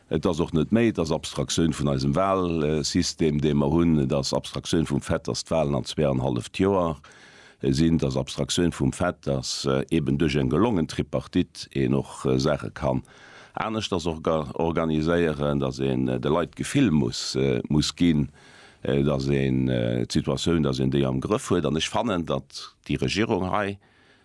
Et ass och net méi, et ass Abstraktioun vun eisem Wahlsystem, dee mer hunn. Et ass Abstraktioun vum Fait, dass d'Wahlen an zwee an en halleft Joer sinn. Et ass Abstraktioun vum Fait, dass eben duerch eng gelongen Tripartite een och Saache kann aneschters organiséieren, dass een de Leit d'Gefill muss ginn, dass een d'Situatioun, dass een déi am Grëff huet. An ech fannen, datt déi Regierung hei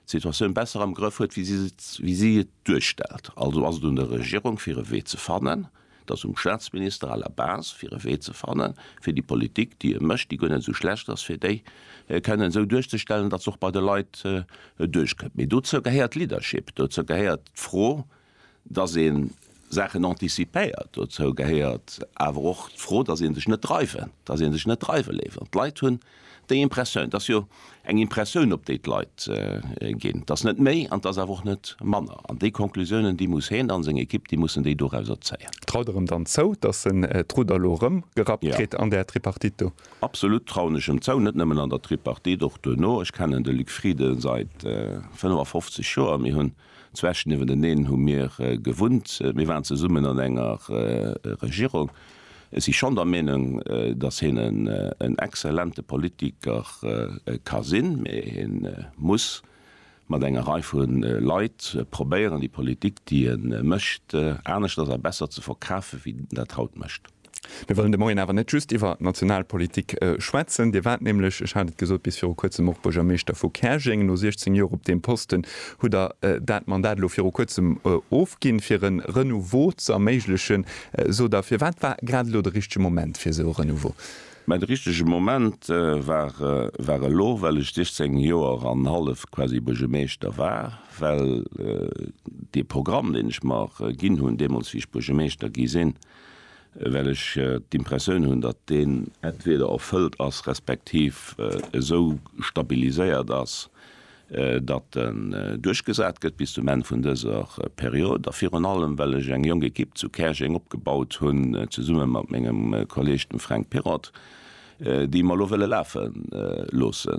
d'Situatioun besser am Grëff huet, wéi si et duerstellt. Also ass et un der Regierung, fir e Wee ze fannen, et ass um Staatsminister à la base, fir e Wee ze fannen, fir déi Politik, déi e mécht, déi guer net esou schlecht ass, fir déi kënnen esou duerchzestellen, datt se och bei de Leit duerchkënnt. Mee dozou gehéiert Leadership, dozou gehéiert d'Fro, dass ee Saachen anticipéiert, dozou gehéiert awer och d'Fro, dass ee sech net dreiwen, dass ee sech net dreiwe léisst. An d'Leit hunn déi Impressioun, et ass jo eng Impressioun op déi d'Leit ginn, et ass net méi an et ass awer och net manner, an déi Conclusiounen, déi muss hien a seng Ekipp, déi mussen déi dorauser zéien. Traut Der em dann zou, dass en d'Rudder elo erëm gerappt kritt an där Tripartite do? Absolut trauen ech em zou, net nëmmen an der Tripartite, och duerno. Ech kennen de Luc Frieden säit 55 Joer, mir hunn Zwesch niewenteneen hu mir gewunnt. Mir waren zesummen an enger Regierung. Ech si schonn der Meenung, datt hien en exzellente Politiker ka sinn, mä hien muss mat enger Rei vu Leit probéieren, déi Politik, déi e mécht, aneschters a besser ze verkafen, wéi en dat haut mécht. Mir wëllen de Moien awer net just iwwer national Politik schwätzen. Dir waart nämlech, ech hat et gesot, bis viru Kuerzem och Buergermeeschter vu Käerjeng. No 16 Joer op deem Posten hutt Der dat Mandat elo viru Kuerzem ofginn, fir e Renouveau ze erméiglechen, sot Der. Firwat war grad elo de richtege Moment fir esou e Renouveau? Mä de richtege Moment war elo, well ech 16 Joer an hallef quasi Buergermeeschter war, well dee Programm, deen ech mer ginn hunn deemools, wéi ech Buergermeeschter gi sinn, well ech d'Impressioun hunn, datt deen entweder erfëllt ass, respektiv esou stabiliséiert ass, datt en duerchgesat gëtt bis zum Enn vun dëser Period, a virun allem well ech eng jonk Ekipp zu Käerjeng opgebaut hunn, zesumme mat mengem Kolleeg dem Fränk Pirrott, déi mer elo wëlle lafe loosse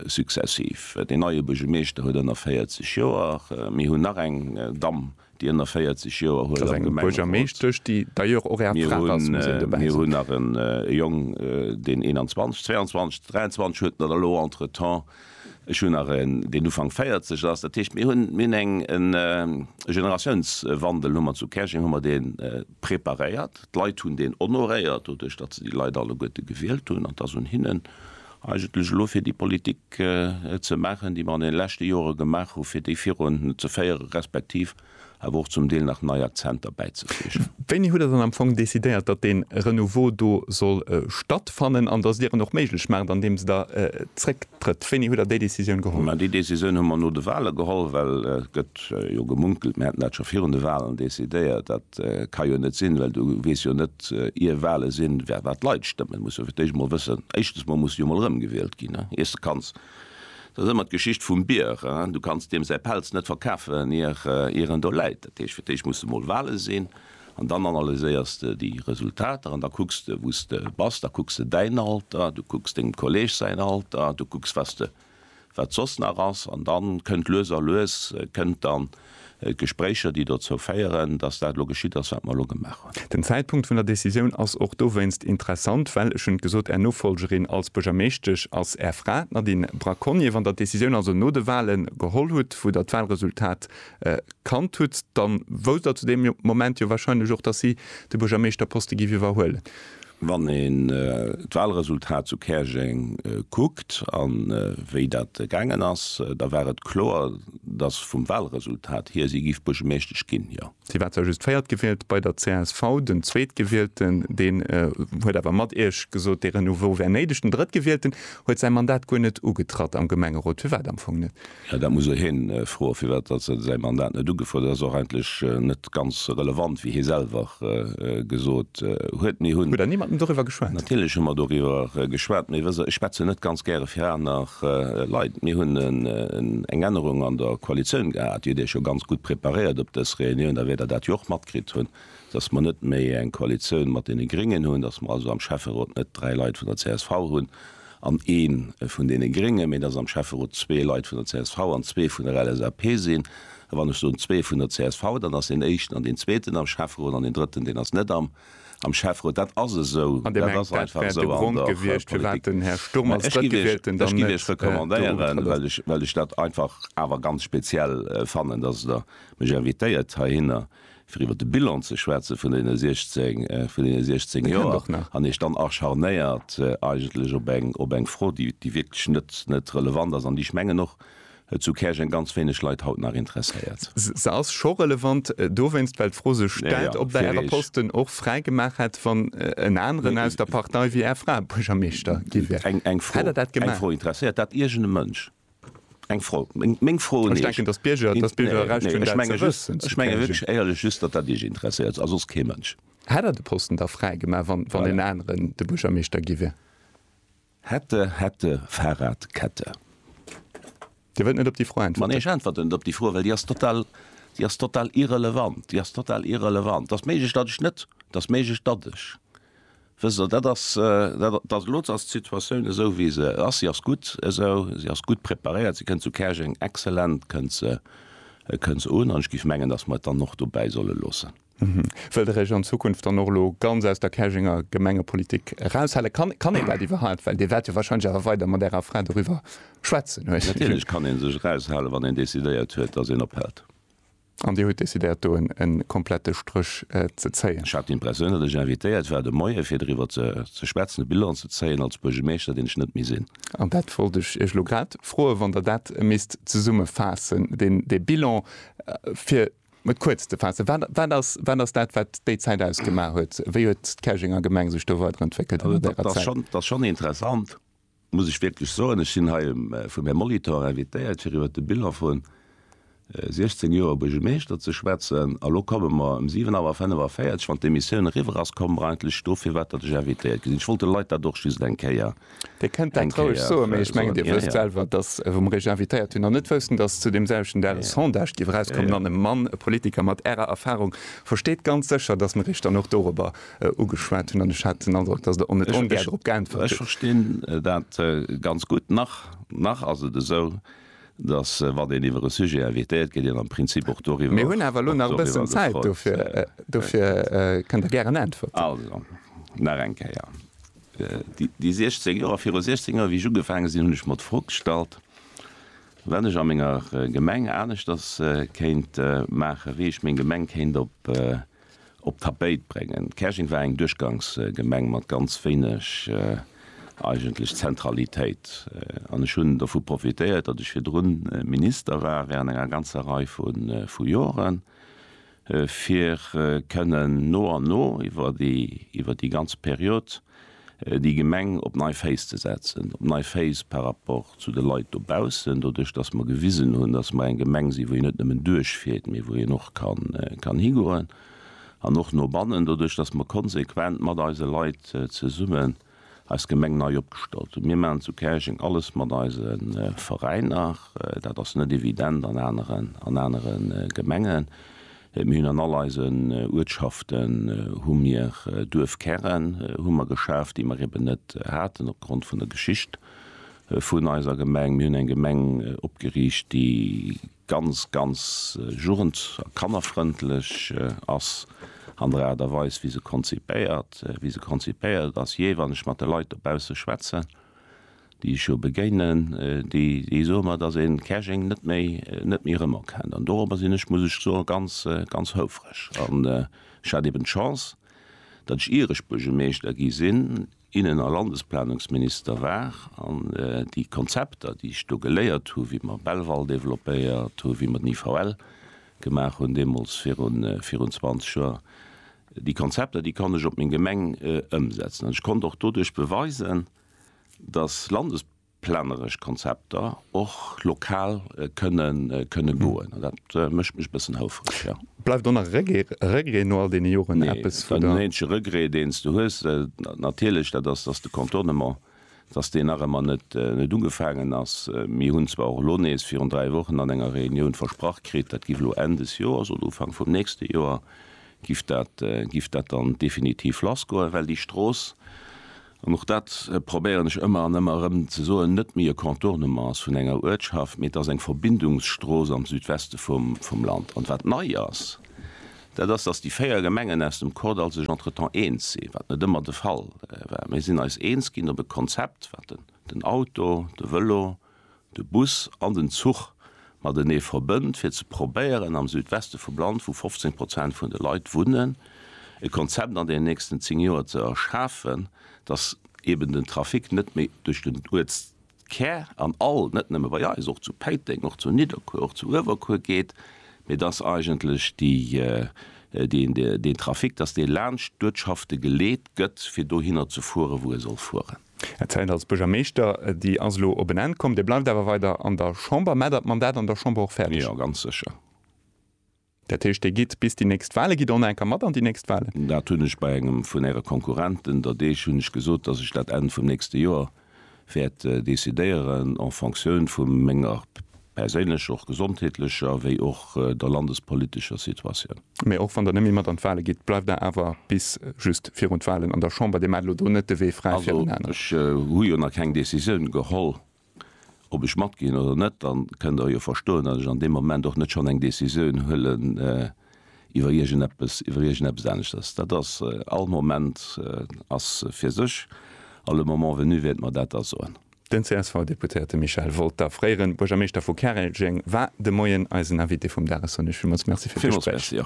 successiv. Deen neie Buergermeeschter huet ënner 40 Joer. Mir hunn nach eng Damm Déi ënner 40 Joer huelen am Gemengerot. Mir hunn nach e Jong, deen 21, 22, 23 huet, mat elo entretemps. Ech hunn nach een, deen Ufank 40 ass. Dat heescht, mir hunn eng Generatiounswandel hu mer zu Käerjeng hu mer dee preparéiert. D'Leit hunn deen honoréiert, doduerch datt se déi Leit alleguerte gewielt hunn. An et ass un hinnen, eigentlech elo fir déi Politik ze maachen, déi mer an deene leschte Jore gemaach hu fir déi virun ze féieren, respektiv awer och zum Deel nach nei Akzenter bäizefleegen. Wéini hutt Der dann am Fong decidéiert, datt dee Renouveau do soll stattfannen an datt Dir en och méiglech maacht andeems Der zrécktrëtt? Wéini hutt Der déi Decisioun geholl? Déi Decisioun hu mer no de Wahle geholl, well et gëtt jo gemunkelt, mir hätten dat scho virun de Wahlen decidéiert, Et ka jo net sinn, well du weess jo net, ier Wahle sinn, wat d'Leit stëmmen. Du muss jo fir d'éischt emol wëssen, éischtens emol muss jo emol erëmgewielt ginn, ier s de kanns. Dat ass ëmmer d'Geschicht vum Bier, du kanns deem säi Pelz net verkafen, ier en do läit. Dat heescht, fir d'éischt muss emol Wahle sinn an dann analyséiers de déi Resultater an da kucks de, wou s de bass. Da kucks de däin Alter, du kucks dengem Kolleeg säin Alter, du kucks, was de wat soss nach ass, an da kënnt lues a lues kënnt dann d'Gespréicher, déi dozou féieren, datt dat elo geschitt ass, wat mer elo gemaach hunn. Den Zäitpunkt vun der Décisioun ass och dowéinst interessant, well, ech hunn et gesot, Är Nofollgerin als Buergermeeschtesch ass Är Fra, d'Nadine Braconnier. Wann Der d'Décisioun also no de Wahle geholl hutt, wou Der d'Wahlresultat kannt hutt, da wousst Der zu deem Moment jo warscheinlech och, datt si de Buergermeeschterposte géif iwwerhuelen. Wann een d'Wahlresultat zu Käerjeng kuckt a wéi dat gaangen ass, da war et kloer, dass vum Wahlresultat hier si géif Buergermeeschtesch ginn, jo. Si war zwar just véiert gewielt bei der csv, den Zweetgewielten, deen huet awer mat Iech gesot, dee Renouveau wär néideg. Den Drëttgewielten huet säi Mandat guer net ugetratt am Gemengerot. Firwat am Fong net? Jo, dat muss e hien froen, firwat datt säi Mandat net ugefuerdert ass. Ass och eigentlech net ganz relevant, wéi hie selwer gesot huet. Mir hunn. Huet der niemandem doriwwer geschwat? Natierlech hu mer doriwwer geschwat, mee wësst Der, ech schwätzen net ganz gäre fir aner Leit. Mir hunn eng Ännerung an der Koalitioun gehat. Dir hutt Iech jo ganz gutt preparéiert op dës Reunioun, da wäert Der dat jo och matkritt hunn, datt mer net méi eng Koalitioun mat deene Gréngen hunn, datt mer also am Schäfferot net dräi Leit vun der csv hunn, an ee vun deene Gréngen, mee dass am Schäfferot zwee Leit vun der csv an zwee vun der LSAP sinn. A wann ech soen zwee vun der csv, dann ass deen éischten an deen zweeten am Schäfferot an deen drëtten, deen ass net am am Schäfferot. Dat ass esou, dat ass einfach esou an der Politik. Mä ech giff Iech, ech giff Iech recommandéieren, well ech, well ech dat einfach awer ganz speziell fannen, dass Der mech invitéiert heihinner, fir iwwer de Bilan ze schwätzen vun deene 16, vun deene 16 Joer, an Iech dann acharnéiert eigentlech op eng, op eng Fro, déi, déi wierklech net, net relevant ass an déi, ech mengen, och zu Käerjeng ganz wéineg Leit haut nach interesséiert. Se ass scho relevant dowéinst, well d'Fro sech stellt, ob Der Äre Posten och fräi gemaach hätt, wann en aneren aus der Partei wéi Är Fra Buergermeeschter gi wär. Eng Fro, eng Fro interesséiert dat iergende Mënsch? Eng Fro. Meng Fro un Iech. Ech menge wierklech éierlech just, datt dat Iech interesséiert a soss kee Mënsch. Hätt Der de Posten da fräi gemaach, wann en aneren de Buergermeeschter gi wier? Hätte, hätte, Fahrrad, Kette. Dir wëllt net op déi Fro äntwerten? Mä nee, ech äntwerten net op déi Fro, well déi ass total, déi ass total irrelevant. Déi ass total irrelevant. Et ass méiglech, datt ech net, et ass méiglech, datt ech. Wësst Der, dat ass, dat ass, elo ass d'Situatioun esou, wéi se ass. Si ass gutt esou, si ass gutt preparéiert. Si kënnt zu Käerjeng exzellent, kënnt se, kënnt se un. An ech géif mengen, datt mer et dann och dobäi solle loossen. Wëllt Der Iech an Zukunft dann och elo ganz aus der Käerjenger Gemengepolitik eraushalen? Kann, kann een dat iwwerhaapt? Well Dir waert jo warscheinlech awer weider mat Ärer Fra doriwwer schwätzen, hu ech. Natierlech kann ee sech eraushalen, wann een decidéiert huet, datt een ophält. An Dir hutt decidéiert, do e komplette Stréch ze zéien? Ech hat him perséinlech invitéiert, war de Moie fir driwwer ze schwätzen, e Bilan ze zéien als Buergemeeschter, deen ech net méi sinn. An dat wollt ech Iech elo grad froen, wann Der dat misst zesummefaassen, dee Bilan, fir et kuerz ze faassen, wat ass dat, wat déi Zäit ausgemaach huet? Wéi huet d'Käerjenger Gemeng sech do weiderentwéckelt an där Zäit? Dat ass schonn interessant, muss ech wierklech soen, ech sinn hei vum Här Molitor invitéiert, fir iwwert de Bilan vu 16 Joer Buergermeeschter ze schwätzen. A lo komme mer ëm 7 Auer 45, wann d'Emissioun eriwwer ass, komme mer eigentlech do, firwat datt ech invitéiert gi sinn. Ech wollt de Leit dat och just eng Kéier soen. Dir kënnt dat roueg soen, mee ech mengen, Dir wësst selwer, datt wou mer Iech invitéiert hunn, an net woussten, datt zu deem selwechten Dag e Sondage géif erauskommen, an e Mann, e Politiker mat Ärer Erfarung, versteet ganz sécher, datt mer Iech dann och dorobber ugeschwat hunn, an ech hat den Androck, dass Der och net ongär dorop geäntwert hutt. Ech verstinn dat ganz gutt. Nach, nach ass et esou, dass, wann een iwwer e Sujet invitéiert gëtt, een am Prinzip och doriwwer, och doriwwer gefrot gëtt. Mir hunn awer elo nach e bëssen Zäit, dofir, dofir kënnt Der gären äntwerten. Also, nach eng Kéier, déi 16 Joer, viru 16 Joer, wéi ech ugefaange sinn, hunn ech mer d'Fro gestallt, wat ech a menger Gemeng aneschters kéint maachen, wéi ech meng Gemeng kéint op, op d'Tapéit bréngen. Käerjeng war eng Duerchgangsgemeng mat ganz wéineg eigentlech Zentralitéit. An ech hunn dovu profitéiert, datt ech virdru Minister war während enger ganzer Rei vu Joren, fir kënnen no an no iwwer déi ganz Periode, déi Gemeng op nei Féiss ze setzen, op nei Féiss par rapport zu de Leit dobaussen, doduerch datt mer gewisen hunn, datt mer eng Gemeng sinn, wou een net nëmmen duerchfiert, mee wou een och kann higoen an och no bannen, doduerch datt mer konsequent mat eise Leit zesummen eis Gemeng nei opgestallt hunn. Mir maachen zu Käerjeng alles mat eise Veräiner, dat ass net evident an anere Gemengen, Mir hunn an all eisen Uertschaften hu mir Duerfkären hu mer geschaf, déi mer eben net haten opgrond vun der Geschicht vun eiser Gemeng. Mir hunn eng Gemeng opgeriicht, déi ganz, ganz jugend a kannerfrëndlech ass an der Aart a Weis, wéi se konzipéiert, wéi se konzipéiert ass. Jee, wann ech mat de Leit dobausse schwätzen, déi ech jo begéinen, déi soe mer, dass ee Käerjeng net méi rëmerkennt. An dorobber sinn ech, muss ech soen, ganz, ganz houfreg. An ech hat eben d'Chance, datt ech, ier ech Buergermeeschter gi sinn, Innen a Landesplanungsminister war an déi Konzepter, déi ech do geléiert hu wéi mer Belval developpéiert hunn, wéi mer den IVL gemaach hunn deemools virun 20 Joer, déi Konzepter, déi konnt ech op meng Gemeng ëmsetzen. An ech konnt och doduerch beweisen, dass landesplaneresch Konzepter och lokal kënne goen. An dat mécht mech e bëssen houfereg, jo. Bleift och nach e Regret no all deene Joren eppes? Nee, deen eenzege Regret, deen s de hues, natierlech, dat ass, dass de Contournement, dass deen nach ëmmer net ugefaangen ass. Mir hunn zwar och elo nees virun dräi Wochen an enger Reunioun versprach kritt, dat giff elo Enn des Joers oder Ufank vum nächste Joer giff dat dann definitiv lassgoen, well déi Strooss, an och dat probéieren ech ëmmer an ëmmer erëm ze soen, net méi e Contournement ass vun enger Uertschaft, mee et ass eng Verbindungsstrooss am Südweste vum Land. An wat nei ass, dat ass, dass déi véier Gemengen aus dem Kordall sech entretemps eens sinn, wat net ëmmer de Fall war. Mir sinn eis eens ginn op e Konzept, wat den Auto, de Vëlo, de Bus an den Zuch matenee verbënnt, fir ze probéieren, am Südweste vum Land, wou 15 Prozent vun de Leit wunnen, e Konzept an deenen nächsten zéng Joer ze erschafen, dass eeben den Trafic net méi duerch den Uertskär an all, net nëmme bei eis, och zu Péiteng, och zu Nidderkuer, och zu Uewerkuer geet, mee dass eigentlech deen Trafic, dass dee laanscht d'Uertschafte geleet gëtt, fir dohinner ze fueren, wou e soll fueren. Är Zäit als Buergermeeschter, déi ass elo op en Enn komm. Dir bleift awer weider an der Chamber. Maat der d'Mandat an der Chamber och fäerdeg? Jo, ganz sécher. Dat heescht, Dir gitt bis déi nächst Wahlen, gitt Der och nach eng Kéier mat an déi nächst Wahlen? Dat hunn ech bei engem vun Äre Konkurrenten, der Deeg, hunn ech gesot, dass ech dat Enn vum nächste Joer wäert decidéieren en fonctioun vu menger perséinlecher, och gesondheetlecher, wéi och der landespolitescher Situatioun. Mee och wann Der nëmme mat an d'Wale gitt, bleift Der awer bis just virun d'Walen an der Chamber. Dir maacht elo do net de Wee fräi fir en aneren. Also ech hu jo nach keng Décisioun geholl, ob ech matginn oder net. Dann kënnt Der jo verstoen, datt ech an deem Moment och net schonn eng Décisioun huelen iwwer iergendeppes, iwwer iergendeppes aneschters. Dat ass, all Moment ass fir sech a le moment venu wäerte mer dat da soen. Den CSV-Deputéierte Michel Wolter, fréiere Buergermeeschter vu Käerjeng, war de Moien eisen Invité vum Dag. Ech soen Iech villmools Merci fir d'Gespréich.